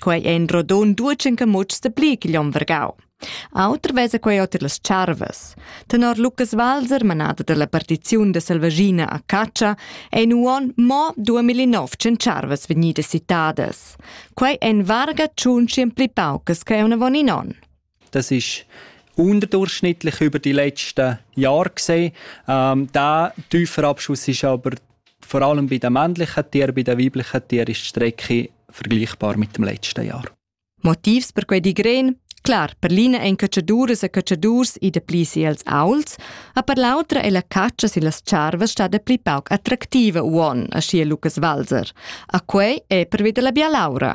Quei ein rodun duetschen camutschs de pli ch'igl onn vargau. Auter vesa quei oter las charvas. Tenor Lucas Walser, manada dalla partiziun de Selvaschina a Caccia, ein uon mo 2900 charvas vegnidas citadas. Quei ein varga tschun pli paucas che unavon in onn. Das ist unterdurchschnittlich über die letzten Jahre gesehen. Ähm, der tiefe Abschuss ist aber vor allem bei den männlichen Tieren, bei den weiblichen Tieren ist die Strecke vergleichbar mit dem letzten Jahr. Motivs per quei digren Klar, per l'ina ein cacciaduras e cacciadurs i de pli si els auls, a per l'autra è la caccia si las charvas sta de pli pauc attraktiva uon, a scia Lucas Walser. A quei è per veder la bialaura.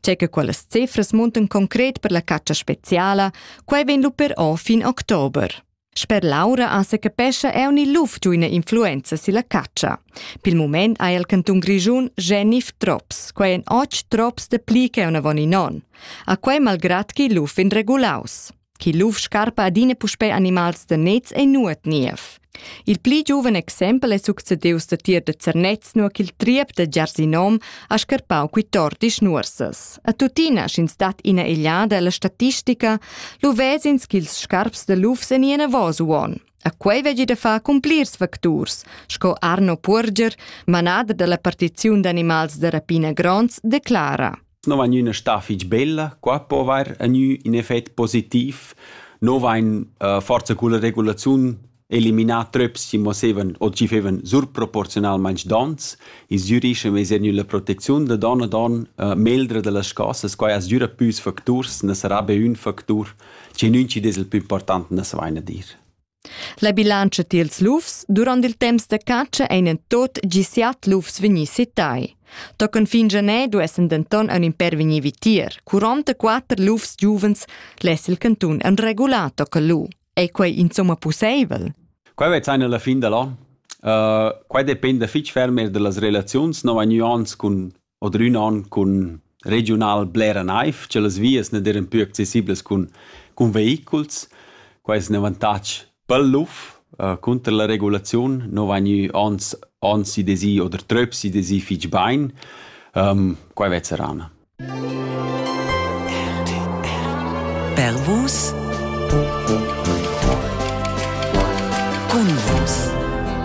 Tge che quellas cifras muntan concret per la caccia speziala, quai vegn lu però fin october. Sper Laura ans se capescha eu ni luf giu ina influenza silla caccia. Pil moment ha il cantun Grischun Genif Trops, quai en och trops de pli che una von in on. A quai malgrat chi luf in regulaus. Chi luf scarpa adina puspè animals da nets e nuot niev. Il pli giuven exempel è succedius da tier da Zernez, nur ch'il triep da Giarsinom ha scarpau qui tor dis nuorsas. A tuttina, sch'ins dat ina egliada alla statistica, lu vesins ch'ils scarps da lufs en ina vosuon. A quei veggi da far cun plirs facturs, sco Arno Purger, manader dalla partiziun d'animals da rapina gronds, declara. non vain üna stà fich bella, qua po avair a gnü ün effet positiv. No vain uh, forsa culla regulaziun eliminà tröps chi mosevan o chi fevan surproporzionalmaing dons. Ils giurischem es er gnü la protecziun da don ad don uh, meldra da las chosas. Quai as düra püs facturs, na sarà be ün factur, che nun ci des il plü important, na sa vaina dir. La bilantscha tiels lufs durant il temps da catscha ein en tot gi siat lufs vegni setai. Tochen fin Gener duessen denton ein in per vegnir vitier. 44 lufs giuvens less il cantun en regular tocker lu. Ei quei insomma pusseivel? Quei vez ein alla fin dall'an. Uh, quei dependa fitg ferm er dallas relaziuns. No vegn anc cun Odrün on cun regiunal blera naiv, che las vias ne deran pü accessiblas cun, cun vehiculs. Quai es ün avantatg pel luf. Uh, cunter la regulaziun no vain gnü ons, ons i desi oder tröps i desi fich bain. Um, quai vezza rana. Pervus